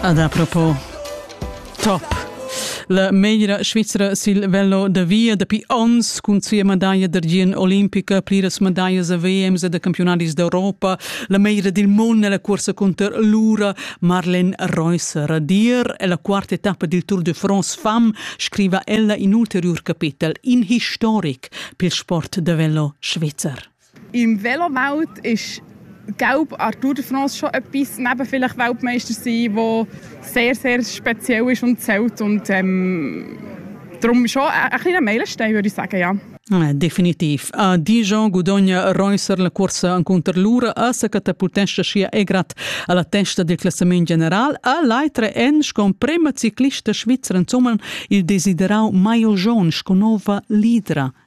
Ad apropos top La meglra Svizra sil velo da via dapi ons cun sia medaglia d'argien olimpica, pliras medaglas a VMs e da campionatis d'Europa, la meglra dil mund nella cursa cunter l'ura Marlene Reusser. Dir è la quarta etappa dil Tour de France fam, scriva ella in ulteriur capitel, in historic pil sport da velo svizzer. Im Velowelt ist Gelb Arthur de France schon etwas neben vielleicht Weltmeister sein, der sehr, sehr speziell ist und zählt. Und ähm, darum schon ein, ein kleiner Meilenstein, würde ich sagen, ja. Ah, definitiv. A Dijon guadogna Reusser la cursa encunter l'ura a sa catapultescha sia egrat alla testa del classament general a l'aitre en con prema ciclista svizra insomma il desiderau Maio John sco nova lidra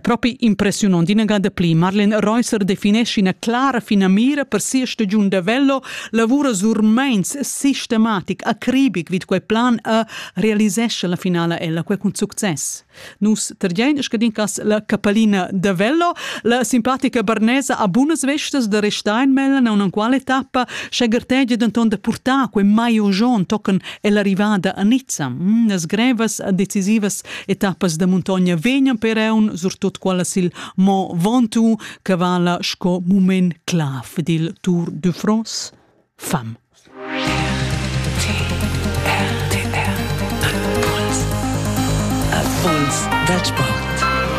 Propi impressiunont inagà da pli. Marlen Reusser definesci ina clara finamira per sia stagiun da vello, lavura sur meins sistematic, acribic vid quei plan e realisesce la finala ella quei cun success. Nus tergein scadincas la capellina da vello, la simpatica barnesa a bunas vestas da Resteinmellen a una quale tappa, sche gartegia denton da purtar quei mai ojon tochen ell'arrivada a Nizza. Mm, las grevas decisivas Etappas da muntogna vegnan per eun surtot quellas il Mont Ventoux che vala sco mument clav dil Tour de France fam. Impuls dal sport.